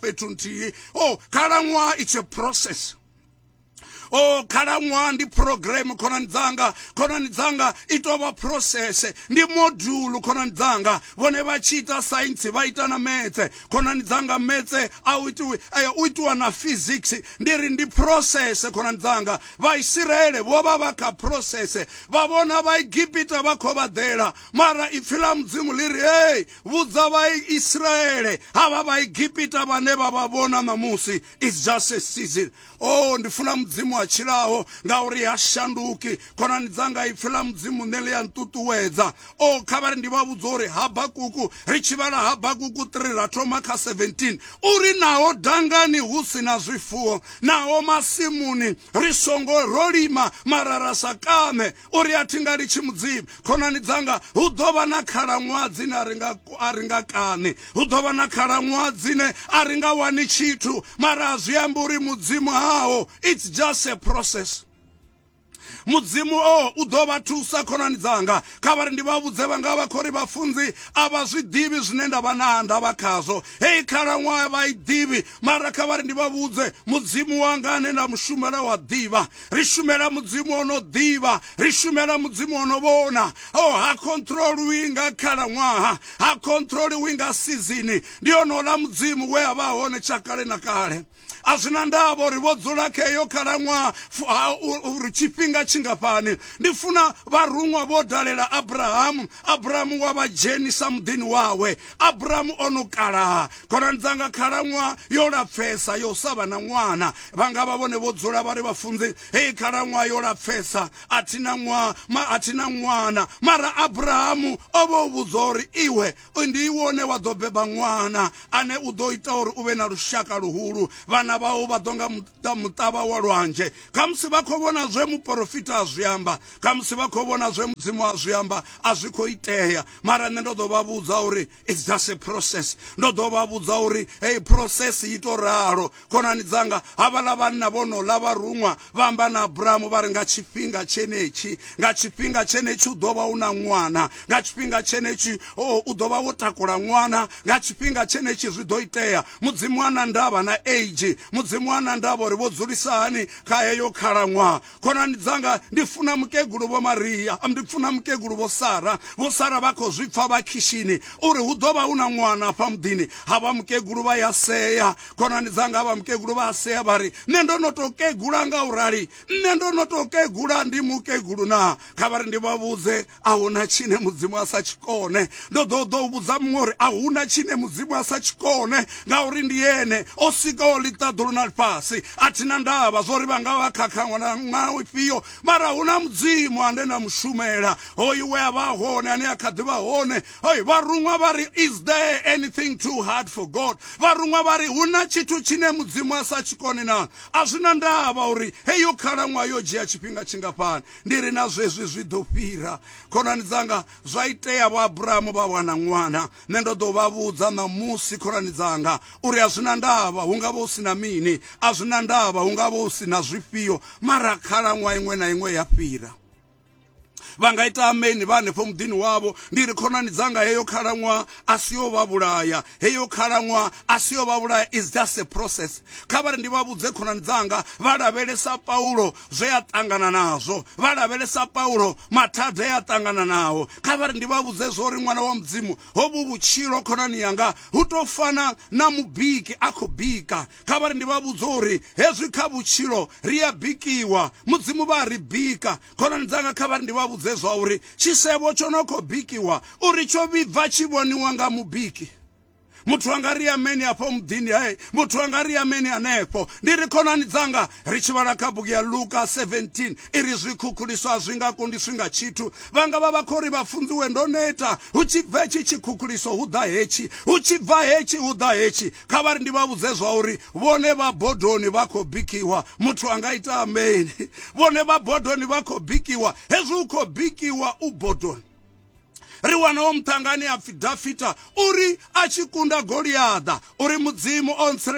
fhethu nthihi o oh, khalaṅwaha it's a process o oh, khalaṅwaha ndi program khonani dzanga khonani dzanga i tou vha process ndi module khonani dzanga vhone vha tshi ita science vha ita na metse khonani dzanga metse a u itiwe eh, u itiwa na physics ndi ri ndi process khonani dzanga vhaisiraele vho vha vha kha process vha vhona vhaegipita vha khou vha ḓela mara ipfi ḽa mudzimu ḽi ri hei vhudza vhaisraele havha vhaegipita vhane vha vha vhona ṋamusi is just a season o oh, ndi funa mudzimu a tshilaho ngauri ha shanduki khonani dzanga ipfi ḽa mudzimu ṋe ḽi a nṱuṱuwedza o oh, kha vhari ndi vha vhudza uri habakuku ri tshi vhala habakuku 3 ra thoma kha 17 uri naho dangani hu si na zwifuwo naho masimuni ri songo ro lima mara ra sa kaṋe uri a thi nga litshi mudzimu khonani dzanga hu ḓo vha na khalaṅwaha dzine a ri nga a ri nga kani hu ḓo vha na khalaṅwaha dzine a ri nga wani tshithu mara a zwi amba uri mudzimu haho it's just a process mudzimu o u ḓo vha thusa khonani dzanga kha vha ri ndi vha vhudze vha nga vha khori vhafunzi a vha zwi ḓivhi zwine nda vha na ndavha khazwo heyi khalaṅwaha vha i ḓivhi mara kha vha ri ndi vha vhudze mudzimu wanga ane nda mushumela wa ḓivha ri shumela mudzimu ono ḓivha ri shumela mudzimu ono vhona o oh, ha controliwi nga khalaṅwaha ha controliwi nga sizini ndi onola mudzimu we a vha hone tsha kale na kale a zwi na ndavha uri vho dzula kha eyo khalaṅwaha uri tshifhinga tshingafhani ndi funa vharuṅwa vho dalela abrahamu abrahamu wa vha dzhenisa muḓini wawe abrahamu o no kalaha khonani dzanga khalaṅwaha yo lapfesa yo sa vha na ṅwana vha nga vha vhone vho dzula vha ri vhafunzi hei khalaṅwaha yo lapfesa a thi na ṅwaha ma a thi na ṅwana mara abrahamu o vha u vhudzwa uri iwe ndi iwe one wa ḓo beba ṅwana ane u ḓo ita uri u vhe na lushaka luhulu vhana vhau vha ḓo nga ḓa muṱavha wa lwanzhe khamusi vha khou vhona zwe muporofita a zwi amba khamusi vha khou vhona zwe mudzimu a zwi amba a zwi khou itea mara nṋe ndo ḓo vha vhudza uri it's just a process ndo ḓo vha vhudza uri heyi process i to ralo khonani dzanga havhaḽa vhanna vho no ḽa vha ruṅwa vha amba na abrahamu vha ri nga tshifhinga tshenetshi nga tshifhinga tshenetshi u ḓo vha u na ṅwana nga tshifhinga tshenetshi u ḓo vha wo takula ṅwana nga tshifhinga tshenetshi zwi ḓo itea Mudzimu ha na ndavha na age, Mudzimu ha na ndavha uri vho dzulisa hani kha heyo khalaṅwaha. Khonani dzanga, ndi funa mukegulu vho Maria, ndi funa mukegulu vho Sara. Vho Sara vha khou zwi pfa vha khishini uri hu ḓo vha hu na ṅwana afha muḓini. Havha mukegulu vha ya sea, khonani dzanga havha mukegulu vha a sea vha ri, nṋe ndo no tou kegula nga u rali, nṋe ndo no tou kegula ndi mukegulu naa? Kha vha ri ndi vha vhudze a huna tshine mudzimu a sa tshikone ndo ḓo ḓo u vhudza muṅwe uri a huna tshine mudzimu a sa tshikone ngauri ndi ene o sikaho ḽiṱaḓulu na ḽifhasi a thina ndavha zwo ri vha nga vha khakhaṅwa na ṅwaho ifhio mara hu na mudzimu ane na mushumela hoyu we a vha hone ane a kha ḓi vha hone hoi vharuṅwa vha ri is there anything too hard for god vharuṅwa vha ri hu na tshithu tshine mudzimu a sa tshikone na a zwi na ndavha uri heyo khalaṅwaha yo dzhia tshifhinga tshingafhani ndi ri na zwezwi zwi ḓo fhira khonani dzanga zwa itea vho abrahamu vha wana ṅwana nṋe ndo ḓo vha vhudza ṋamusi khonani dzanga uri a zwi na ndavha hu nga vha hu si na mini a zwi na ndavha hu nga vha hu si na zwifhio mara khalaṅwaha iṅwe na iṅwe ya fhira vha nga ita ameni vha hanefho muḓini wavho ndi ri khonani dzanga heyo khalaṅwaha a si yo vha vhulaya heyo khalaṅwaha a si yo vha vhulaya is just a process kha vha ri ndi vha vhudze khonani dzanga vha lavhelesa paulo zwe a ṱangana nazwo vha lavhelesa paulo mathada e a ṱangana nao kha vha ri ndi vha vhudze zwo ri ṅwana wa mudzimu hovhu vhutshilo khonani yanga hu tou fana na mubiki a khou bika kha vha ri ndi vha vhudze uri hezwi kha vhutshilo ri a bikiwa mudzimu vha ri bika khonani dzanga kha vha ri ndi vha vhudze zwa uri tshisevho tsho no khou bikiwa uri tsho vhibva tshi vhoniwa nga mubiki muthu a nga ri ameni afho muḓini hae muthu a nga ri ameni hanefho ndi ri khonani dzanga ri tshi vhala kha bugu ya luka 17 i ri zwikhukhuliso a zwi nga kundiswi nga tshithu vhanga vha vha khou ri vha funziwe ndo neta hu tshi bva hetshi tshikhukhuliso hu ḓa hetshi hu tshi bva hetshi hu ḓa hetshi kha vha ri ndi vha vhudze zwa uri vhone vha bodoni vha khou bikiwa muthu a nga ita ameni vhone vha bodoni vha khou bikiwa hezwi u khou bikiwa u bodoni ri wana wo muṱangani a pfhi dafita uri a tshi kunda goliaḓa uri mudzimu o